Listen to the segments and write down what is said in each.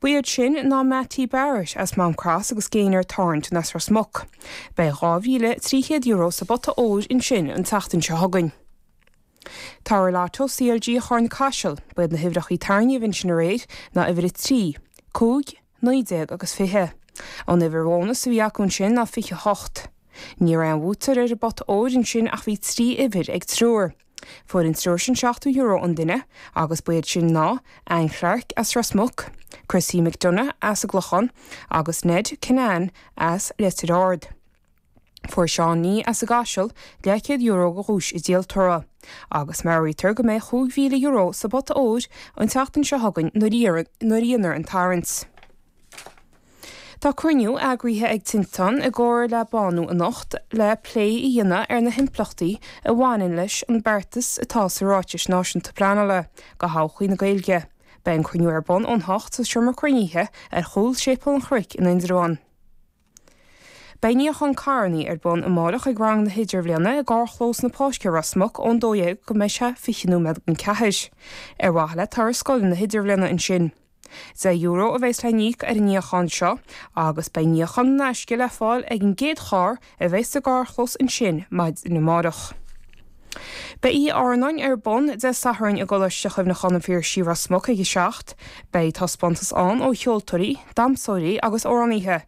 Ba iad sin ná Mattie Barrett as Maam Cross agus Gaynor Thornton as Ros Muc. Beidh €2,300 sa bpota óir ansin an tseachtain seo chugainn. Toradh Lotto CLG Charna Caiseal, Ba iad na huimhreachaí a tarraingíodh ansin aréir ná uimhir 3, 5, 19 agus 20. An uimhir bhónas a bhí acu ansin ná 28. Ní raibh aon bhuaiteoir ar an bpota óir ansin ach bhí trí uimhir ag triúr. Fuair an triúr sin €70 an duine agus ba iad sin ná, Anne Clarke as Ros Muc, Chrissie McDonagh as an gClochán agus Ned Kinane as Leitir Ard. Fuair Seán Nee as an gCaiseal €200 de dhuais an díoltóra agus meabhraítear go mbeidh €5,000 sa bpota óir an tseachtain seo chugainn nuair a dhéanfar an tarraingt. Tá cruinniú eagraithe ag Tinteán i gcomhar le Bánú anocht le plé a dhéanamh ar na himpleachtaí a bhaineann leis an beartas atá sa Ráiteas Náisiúnta Pleanála do thodhchaí na Gaeilge. Beidh an cruinniú ar bun ón hocht sa Seomra Cruinnithe ar chúl Séipéal an Chnoic in Indreabhán. Beidh níochán carrannaí ar bun amáireach ag rang na hIdirbhliana i gCarrchlós na Páirce i Ros Muc ón 12:00 go mbeidh sé 20 nóiméad go 4:00, ar mhaithe le turas scoile na hIdirbhliana ansin. Deich euro a bheas le n-íoc ar an níochán seo agus beidh níochán in aisce le fáil ag an gcéad charr a bheas sa gcarrchlós ansin maidin amáireach. Beidh oíche airneáin ar bun Dé Sathairn i gColáiste Chuimhneacháin an Phiarsaigh, Ros Muc, ag 7. Beidh taispeántas ann ó cheoltóirí, damhsóirí agus amhránaithe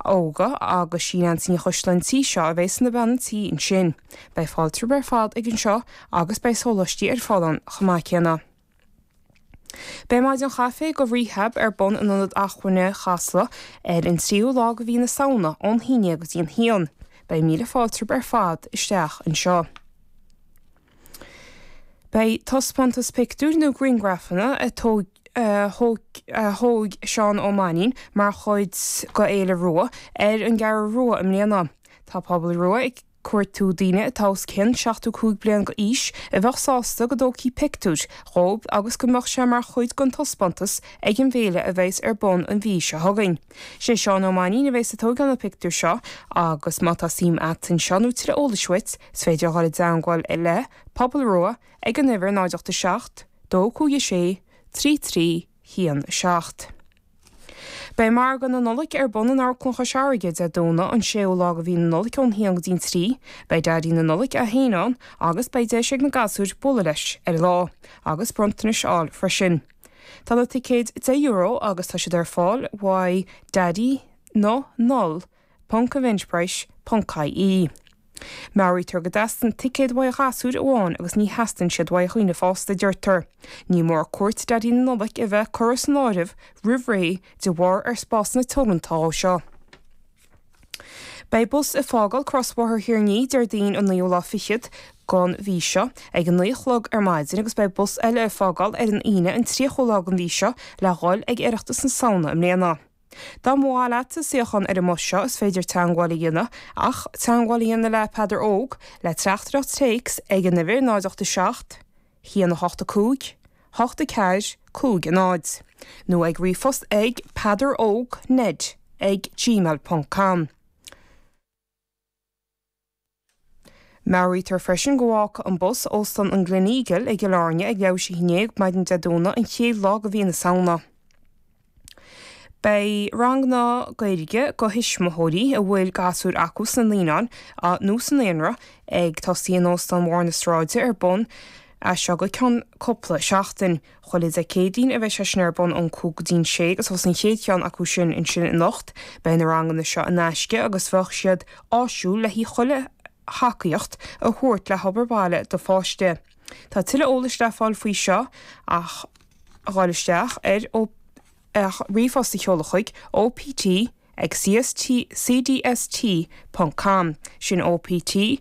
óga agus sí Neansaí Ní Choisdealbha an tí seo a bheas ina bean an tí ansin. Beidh fáilte romhaibh ar fad ag an seo agus beidh sóláistí ar fáil ann chomh maith céanna. Beidh Maidin Chaife do Rehab ar bun in Ionad Acmhainne Chasla ar an tríú lá de mhí na Samhna ón haon déag go dtí an haon. Beidh míle fáilte romhaibh ar fad isteach anseo. Beidh taispeántas pictiúr nó griangrafanna a thóg Seán Ó Mainnín mar chuid de Fhéile Rua ar an gCeathrú Rua i mbliana. Tá Pobal Rua ag. cuartú daoine atá os cionn 75 bliain d'aois a bheadh sásta go dtógfaí pictiúir dhóibh agus go mbeadh sé mar chuid den taispeántas ag an bhféile a bheas ar bun an mhí seo chugainn. Sé Seán Ó Mainnín a bheas ag tógáil na pictiúr seo agus má tá suim a't anseo nó tuilleadh eolais uait is féidir a dhul i dteangmháil le Pobal Rua ag an uimhir 0 8 7 2 5 6 3 3 1 7. Beidh Margadh na Nollag ar bun in Amharclann Chois Fharraige, Dé Domhnaigh an 6ú lá de mhí na Nollag ón haon go dtí an trí. Beidh Daidí na Nollag é féin ann agus beidh deis ag na gasúir bualadh leis ar an lá, agus bronntanais a fháil freisin. Tá na ticéid deich euro agus tá siad ar fáil uaidh Daidí na Nol. Ponc Eventbrite ponc ie Meabhraítear go dteastaíonn ticéad uaidh ghasúir amháin agus ní theastaíonn siad uaidh dhaoine fásta, deirtear. Ní mór cuairt Dhaidí na Nollag a bheith curtha san áireamh roimh ré de bharr ar spásanna teoranta ó seo. Beidh bus ag fágáil Crosbhóthar Thír an Fhia Déardaoin an 9ú lá fichead den mhí seo ag a naoi a chlog ar maidin agus beidh bus eile ag fágáil ar an Aoine an tríochú lá den mhí seo le dhul ag Oireachtas na Samhna i mbliana. Dá mba mhaith leat suíochán ar an mbus seo, is féidir teangmháil a dhéanamh, ach teangmháil a dhéanamh le Peadar Óg, le Teachtaireacht Téacs, ag an uimhir 087 185 84 50, nó ag ríomhphost ag peadaróg, ned, ag gmail.com. Meabhraítear freisin go bhfágfaidh an bus Óstán an Gleneagle i gCill Airne ag leathuair tar éis a haon déag maidin Dé Domhnaigh an chéad lá de mhí na Samhna. Beidh ranganna Gaeilge do thuismitheoirí a bhfuil gasúir acu sna naíonáin nó sa naíonra ag tosaí in Óstán Bharr na Sráide ar bun as seo go ceann cúpla seachtain. Chuile Dé Céadaoin a bheidh sé sin ar bun ón cúig go dtí an sé agus thosaigh an chéad cheann acu sin ansin anocht. Beidh na ranganna seo in aisce agus bheadh siad áisiúil le haghaidh chuile thacaíocht a thabhairt le hobair bhaile do pháiste. Tá tuilleadh eolais le fáil faoi seo ach gabháil isteach ar ach ríomhphost a sheoladh chuig, OPT ag CST, cdst. com. Sin OPT ag.